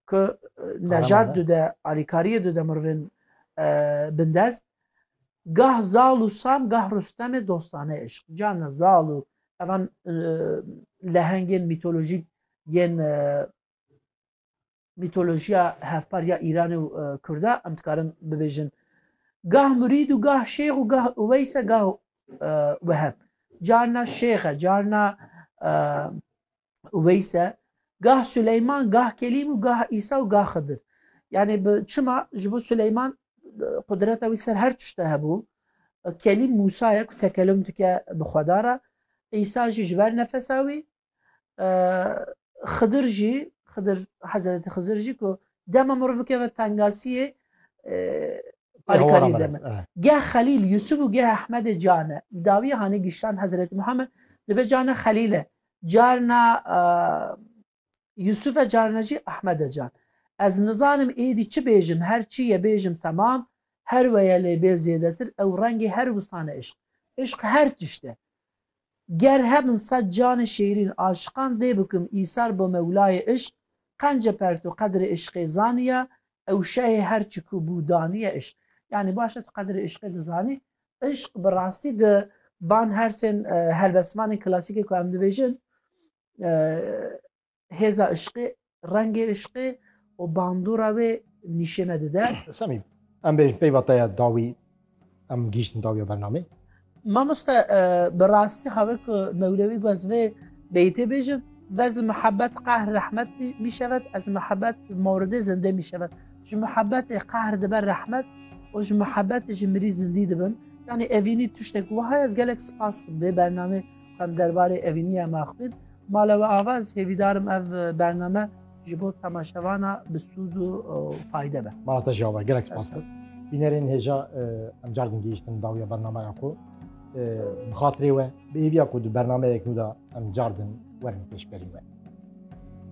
ku nejat dide alîkariyê dide mirvên bindest gah zal û sam gah rustemê dostane eşq carna zal û evan lehengên mîtolojîk yên mîtolojiya hevpar ya îranê û kurda em dikarin bibêjin gah murîd û gah şêx û gah weyse gah weheb carna şêxe carna Uveyse, gah Süleyman, gah Kelim û gah İsa û gah Xıdır. Yani bi çima ji bo Süleyman e, qudreta wî ser her tişte hebû. E, Kelîm Musa ye ku tekelum dike bi Xweda re. İsa jî ji ber nefesa wî. E, Xıdır jî, Xıdır Hazreti Xıdır jî ku dema mirov bikeve tengasiyê Alîkarî deme. Geh Xelîl Yusuf û geh Ahmedê cane. Dawî hanê giştan Hazreti Muhammed dibe cane Xelîle. Carna Yusufe carna jî Ahmede can. Ez nizanim êdî çi bêjim her çi ye bêjim temam, her weye lê bê zêdetir ew rengê her wistan e îşq. Îşq her tişt e. Ger hebin sed canê şêrîn aşiqan dê bikim îsar bo mewlayê îşq, qence perto qedrê îşqê zaniya, ew şehê her çi ku bû daniye îşq. Yanî baş e tu qedrê îşqê dizanî, Îşq bi rastî di van hersên helbestvanên klasîkê ku em dibêjin hêza îşqê, rengê îşqê û bandora wê nîşêne dide. Semîm, em bêjin peyva te ya dawî em gihîştin dawiya bernamê. Mamoste bi rastî have ku mewlewî guhaz vê beytê bêjin, Vez mihebet qahr rehmet mîşevet, ez mihebet mordê zindê mîşevet. ji muhebetê qahr dibe rehmet û ji muhebetê jî mirî zindî dibin. Yanî evînî tiştek wiha ye ez gelek spas bikim vê bernamê em derbarê evînî em axivîn. Mala we ava ez hêvîdarim ev bername ji bo temaşevana bi sûd û fayde be. Mala te jî ava gelek spas bikim. Bînerên hêja em car din gihîştin dawiya bernamaya xwe. Bi xatirê we bi hêviya ku di bernameyek nû de em car din werin pêşberî we.